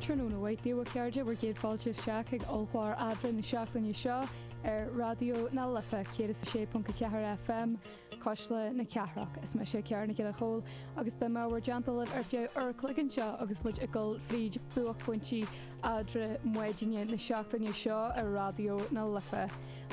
Tráthnóna mhaith daoibh a chairde, bhur gcéad fáilte isteach chuig ollchlár Eadra na seachtaine seo ar Raidió na Life 106.4 FM, Cuisle na Cathrach. Is mise Ciara Nic Giolla Chomhaill agus beidh mé i bhur dteannta libh ar feadh uair a chloig anseo agus muid ag dul fríd buaicphointí eadra maidine na seachtaine seo ar Raidió na Life.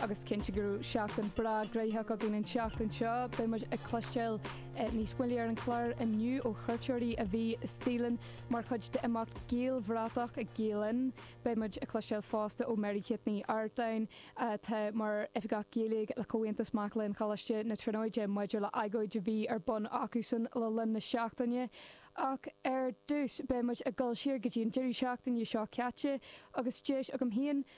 Agus cinnte go raibh seachtain breá gnaitheach againn an tseachtain seo, beidh muid ag cloisteáil Níos moille ar an chlár inniu ó chuairteoirí a bhí istigh linn mar chuid d'imeacht Gaelbhratach ag Gael Linn. Beidh muid ag cloisteáil fosta ó Mary Kate Ní Artáin atá mar Oifigeach Gaeilge le Comhaontas Mac Léinn Choláiste na Tríonóide maidir le agóid a bhí ar bun acusan le linn na seachtaine. Ach ar dtús beidh muid ag dul siar go dtí an deireadh seachtaine seo caite agus deis agam féin,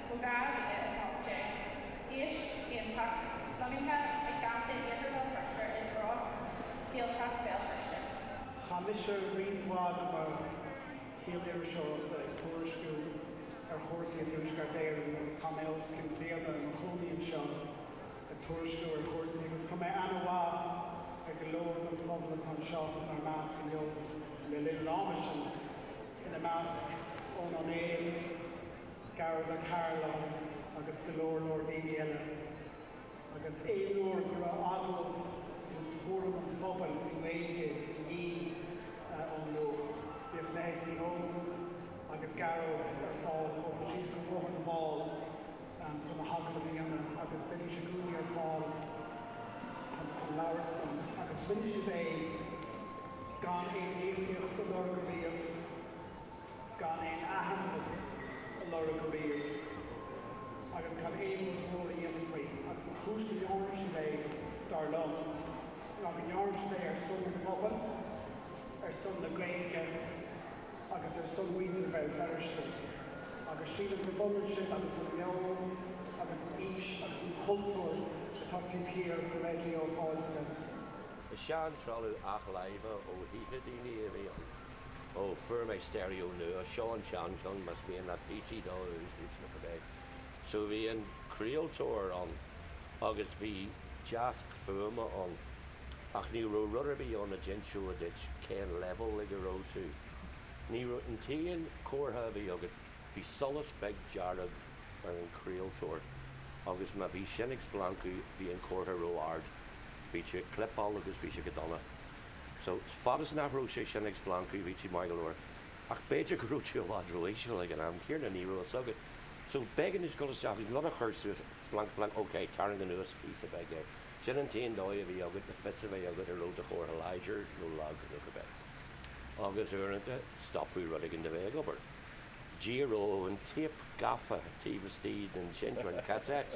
Ó 2018, áis iontach lonnaithe i gCaifé Iarthar Bhéal Feirste i dtreo Ghaeltacht Bhéal Feirste. Chaith mise roinnt mhaith de mo shaol iriseoireachta ag tuairisciú ar chúrsaí i dTuaisceart Éireann agus chaith mé os cionn bliana i mo chónaí anseo ag tuairisciú ar chúrsaí agus chuir mé an-aithne ar go leor den phobal atá anseo inár measc inniu le linn an ama sin, ina measc Eoghan Ó Néill. Gearóid Ó Cairealláin agus go leor leor daoine eile agus aon uair go raibh agallamh nó tuairim an phobail i nGaeilge de dhíth ón nuacht bhíodh leithéidí Eoghain agus Gearóid ar fáil ag bogadh síos go Bóthar na bhFál chun na hagallaimh a dhéanamh agus bheidís i gcónaí ar fáil chun labhairt liom agus rinne siad é gan aon íocaíocht a lorg ariamh. gan aon aitheantas a lorg ariamh agus gan aon rud mór a dhéanamh faoi, agus an chúis go ndearna siad é, dar liom, ná go ndearna siad é ar son an phobail, ar son na Gaeilge agus ar son mhuintir Bhéal Feirste, agus sílim gurb ionann sin agus an meon agus an fhís agus an cultúr atá taobh thiar de Raidió Fáilte. Is sean-trealamh athláimhe ó thithe daoine a bhí ann. Ó, fuair mé steirió nua. Seo an seancheann, más mian leat píosaí dó a úsáid nó cibé. So bhí an craoltóir ann agus bhí deasc fuaime ann ach ní raibh rud ar bith ann a d'inseodh duit cén leibhéal ag a raibh tú. Ní raibh, an t-aon chomhartha a bhí agat, bhí solas beag dearg ar an chraoltóir agus má bhí sin ag splancadh bhí an comhartha ró-ard, bhí tú ag clipeáil agus bhí sé go dona. So, fad is nach raibh sé sin ag splancadh, bhí tú maith go leor. Ach b'fhéidir go raibh tú i bhfad ró-íseal ag an am céanna, ní raibh fhios agat. So, b'éigean duit dhul isteach agus rud a chur suas, splanc, splanc, ok, tarraing anuas píosa beag é. Sin an t-aon dóigh a bhí agat le fios a bheith agat an raibh do chomhartha láidir nó lag nó cibé. Agus uaireanta, stopfadh rud éigin de bheith ag obair. D'éireodh an téip gafa taobh istigh den seinnteoir, an cassette,